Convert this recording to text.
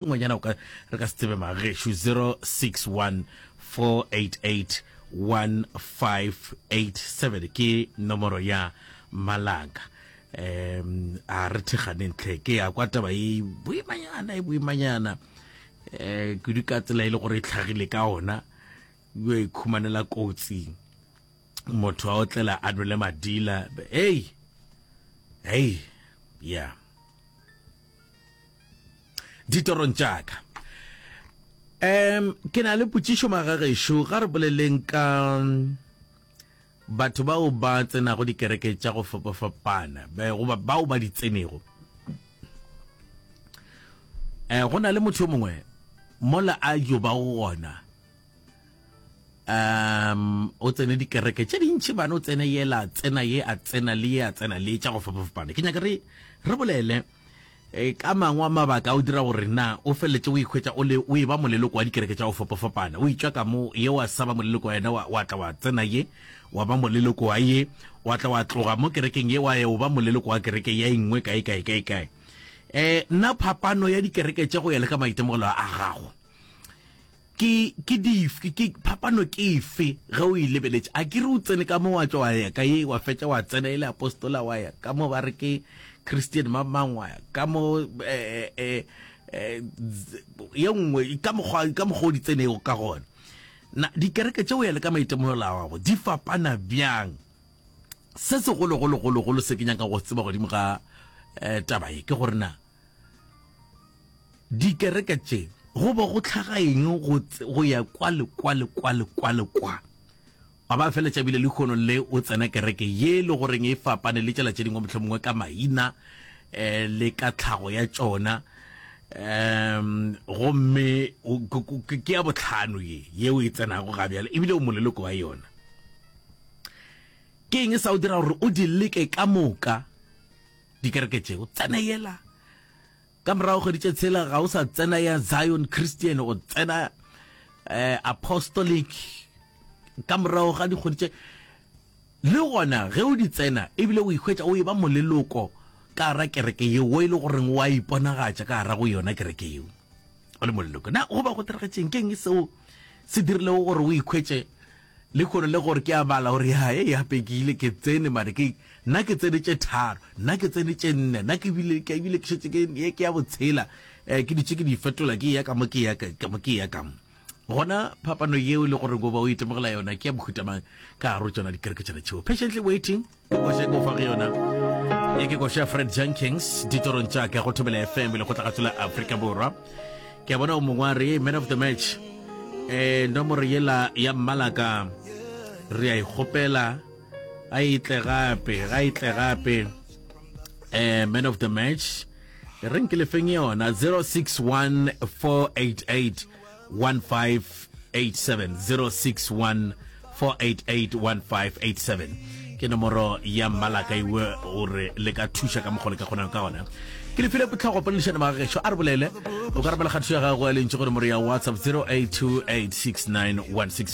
Ngwenyana o ka re ka se tsebe magešu 0614881587 ke nomoro ya malaka um a re theganeng tlhe ke ya kwa taba e boimanyana e boimanyana um kudu ka tsela e le gore e tlhagile ka ona yo e khumanela kotsi motho a otlela a nwele madila ei ei ya yeah. ditorong tša ka um ke na le potšišo magagešo ga re boleleng ka batho bao ba tsenago dikereke tša go fapafapana goba bao ba di tsenego um go na le motho yo mongwe mola a yo ba gona um o tsene dikereke tše dintšhi bana o tsene yela tsena ye a tsena le ye a tsena le tša go fapafapana ke nyaka re re bolele e ka mangwe a mabaka o dira gore na o feleletse o ikhwetsa o le o e ba moleloko wa dikereke tša go fapafapana o itswa ka mo ye wa saba moleloko wa yena wa tla wa tsena ye wa ba moleloko wa ye wa tla wa tloga mo kerekeng ye wa ye o ba moleloko wa kereke ya engwe kae kae kae kae um nna phapano ya dikereke tša go ya le ka maitemogelo a gago Ke, ke dif, ke, ke, phapano ke efe ge o e lebeletše? A ke re o tsene ka mo wa tšwa wa ya ka ye, wa fetša wa tsena e le apostola, wa ya ka mo ba re ke Christian mang mang, wa ya ka mo, eh, eh, eh, ye nngwe, ka mokgwa, ka mokgwa o di tsenego ka gona. Na dikereke tše, go ya le ka maitemogelo a gago, di fapana bjang? Se segolo-golo-golo-golo se ke nyaka go se tseba godimo ga, eh, taba ye, ke gore na. Dikereke tše go bo go tlhaga eng go, go ya kwa le kwa le kwa le kwa le kwa. Wa ba fela tšabile lehono le o tsena kereke ye le goreng e fapane le tšela tše dingwe mohlomongwe ka maina eh, le ka tlhago ya tšona um gomme ke ya botlhano ye yeo e tsenago ga bjale ebile o moleloko wa yona ke eng e sa o dira gore o di leke ka moka dikereke tše o tsena yela ka morago kgwedi tše tshela ga o sa tsena ya zion christian o tsena eh, apostolic ka morago ga dikgwedi tše le gona ge o di tsena ebile o ikgwetsa o e ba moleloko ka gara kereke yeo o e le goreng wa iponagatša ka gara go yona kereke yeo o le moleloko na go ba go tiragetšeng keng e seo se dirilego gore o ikgwetse Lehono le gore ke a bala gore ya e gape ke ile ke tsene mare ke nna ke tsene tše tharo nna ke tsene tše nne nna ke bile ke bile ke šetse ke ye ke ya botshela eh ke ditše ke di fetola ke ya ka mo ke ya ka mo ke ya ka mo gona phapano yeo le gore goba o itemogela yona ke ya bohutamang ka gare tsona dikereke tšena tšeo patiently waiting koša ke ofa go yona e ke koša fred jenkins ditorong tša ka go thobela fm le go tla gatsela afrika borwa ke a bona o mongwe a re man of the match um nomoro yela ya mmalaka re a ikgopela a itle gape ga itle gape um man of the match re nke lefeng yona 061488 1587 ke nomoro ya mmalaka iwe gore le ka thuša ka mokgole ka kgonang ka gona ke le file potlhago poledišane magagešo a re bolele o ka rabela kgathišo ya gago ya lentši go nomoro ya whatsapp 08286916